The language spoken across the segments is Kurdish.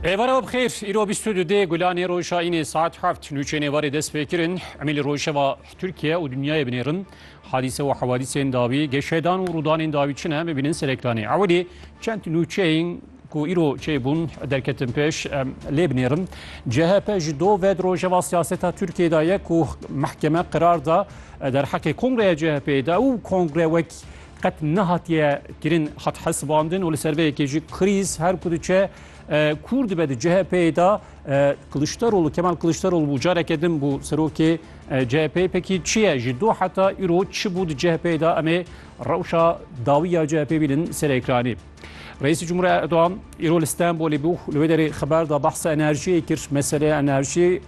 Êvara web xêr, îro bîst û du dê gulanê roja înê saet heft nûçeyên êvarê dest pê kirin. Emî li rojeva Tirkiye û dinyayê binêrin. Hadîse û hewadîsên dawî, geşedan û rûdanên dawî çi ne bibînin sereklanê. Ewilî çend nûçeyên ku îro çê bûn derketin pêş em lê binêrin. CHP ji do ve di rojeva siyaseta Tirkiyeyê de ye ku mehkeme qerar da derheqê kongreya CHP'yê de û kongre wek qet nehatiye kirin hat hesibandin û li ser vê yekê jî krîz her ku diçe kûr dibe di CHP'yê de Kiliçdaroglu Kemal Kiliçdaroglu bû careke din bû serokê CHP'yê pekî çi ye ji do heta îro çi bû di CHP'yê de em ê rewşa dawî ya CHP'ê bînin ser ekranê. Reîsê Cumhurê Erdogan îro li Stenbolê bû li wê derê xeber da behsa enerjiyê kir meseleya enerjiyê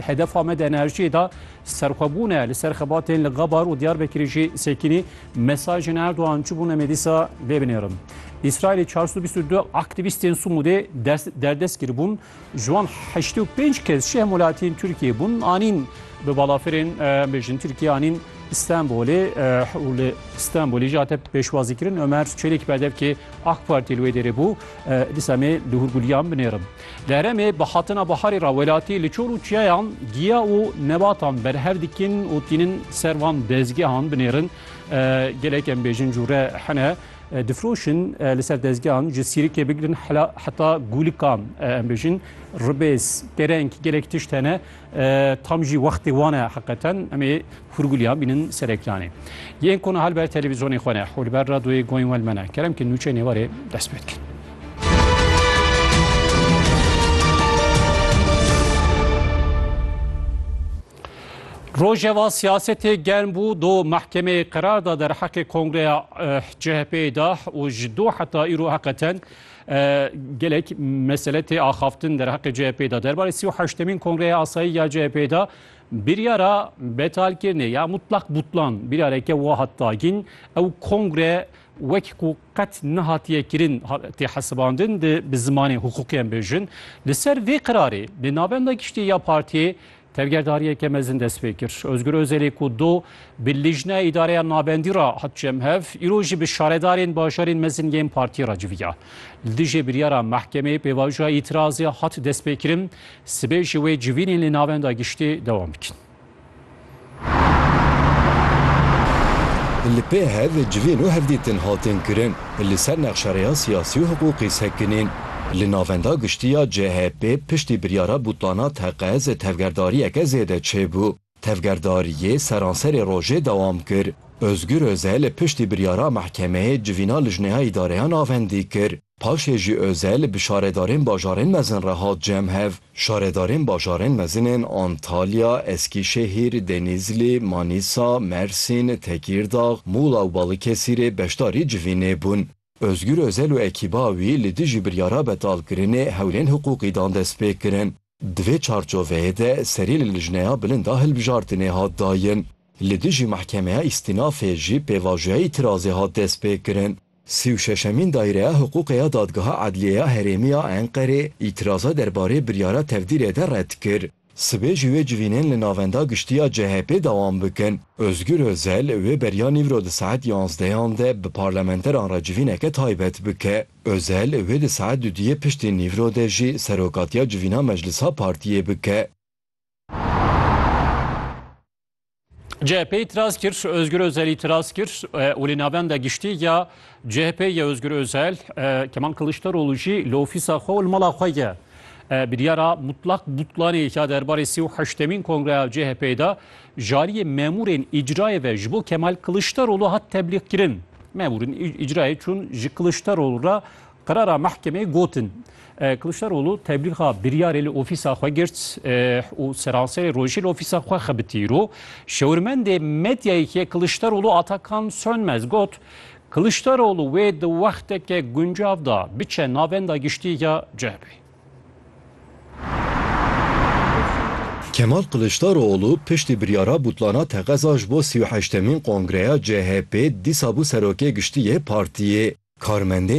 hedefa me di enerjiyê da serxwebûn e li ser xebatên li Gabar û Diyarbekirê jî sekînî mesajên Erdogan çi bûne me dîsa lê binêrin. Îsraîlê 422 aktîvîstên Sumûdê derdest kiribûn Ji wan heştê û pênc kes ji hemwelatiyên Tirkiyeyê bûn, anîn bi balafirên bêjin Tirkiye anîn Stenbolê û li Stenbolê jî hate pêşwazîkirin. Omer Çelîk berdevkê AK Partî li wê dêrê bû. Dîsa me li hûrgulîyan binêrin. Li herêmê bi hatina biharê re welatî li çor û çiyayan giya û nebatan berhev dikin û tînin ser van dezgehan binêrin. Gelek em bêjin cûre hene. Difiroşin li ser dezgehan ji sîrikê bigirin heta gûlikan em bêjin ribêz kereng gelek tişt hene tam jî wextê wan e heqeten em ê hûrgûliyan bînin ser ekranê. Yên kona hal ber televîzyonê xwe ne hû li ber radoyê goyên wel me ne kerem ki nûçeyê nêwarê dest pê dikin. Rojeva siyasetê germ bû, du mehkemeyê qerar da derheqê kongreya CHP'ê de û ji do heta îro heqeten gelek mesele tê axaftin derheqê CHP'ê de. Derbarê sî û heştemîn kongreya asayî ya CHP'ê de biryara betalkirinê ya mutlak butlan biryareke wa hat dagîn. Ew kongre wek ku qet nehatiye kirin tê hesibandin di bi zimanê huquqî em bêjin. Li ser vê qerarê di navenda giştî ya partiyê Tevgerdariyeke mezin dest pê kir. Ozgur Ozelê ku do bi Lijneya Îdareya Nabendî re hat çem hev, îro jî bi şaredarên bajarên mezin yên partiyê re civiya. Li dijî biryara mehkemeyê pêvajoya îtirazê hat destpêkirin, sibê jî wê civînên li navenda giştî dewam bikin. Li pê hev civîn û hevdîtin hatin kirin li ser nexşereya siyasî û hiqûqî sekinîn. Li navenda giştî ya CHP piştî biryara bûtana teqez tevgerdariyeke zêde çêbû. Tevgerdariyê seranserê rojê dewam kir. Ozgur Ozel piştî biryara mehkemeyê civîna lijneya îdareya navendî kir. Paşê jî Özel bi şaredarên bajarên mezin re hat cem hev. Şaredarên bajarên mezin ên Antalya, Eskîşehîr, Denîzlî, Manîsa, Mersîn, Tekîrdax, Mûla û Balıkesîrê beşdarî civînê bûn. Özgür Özel û ekîba wî li dijî biryara betalkirinê hewlên hiqûqî dan destpêkirin. Di vê çarçoveyê de serî li Lijneya Bilind a Hilbijartinê hat dayin. Li dijî Mehkemeya Îstînafê jî pêvajoya îtîrazê hat destpêkirin. Sî û şeşemîn Daîreya Hiqûqê ya Dadgeha Edliyê ya Herêmî ya Enqerê îtîraza derbarê biryara tevdîrê de red kir. Sibê jî wê civînên li Navenda Giştî ya CHP'ê dewam bikin. Ozgûr Ozel wê beriya nîvro di saet yanzdeyan de bi parlamenteran re civîneke taybet bike. Ozel wê di saet duduyê piştî nîvro de jî serokatiya civîna meclisa partiyê bike. CHP'ê îtiraz kir, Ozgur Ozel îtiraz kir û li navenda giştî ya CHP'ê ye Ozgur Ozel, Kemal Kiliçdaroglu jî li ofîsa xwe û li mala xwe ye. Biryara Mutlak Butlanê ya derbarê sî û heştemîn kongreya CHP'ê da Jaliyê memûrên îcrayê ve ji bo Kemal Kiliçdaroglu hat teblîgkirin. Memûrên îcrayê çûn ji Kiliçdaroglu re qerara mehkemeyê gotin. Kiliçdaroglu teblîga biryarê li ofîsa xwe girt û seranserê rojê li ofîsa xwe xebitî îro. Şewirmendê medyayekî Kiliçdaroglu Atakan Sönmez got, Kiliçdaroglu wê di wexteke guncav de biçe navenda giştî ya CHP'ê. Kemal Kiliçdaroğlu piştî biryara bûtlana teqeza ji bo sî û heştemîn kongreya CHP'ê dîsa bû Serokê Giştî yê partiyê. Karmendên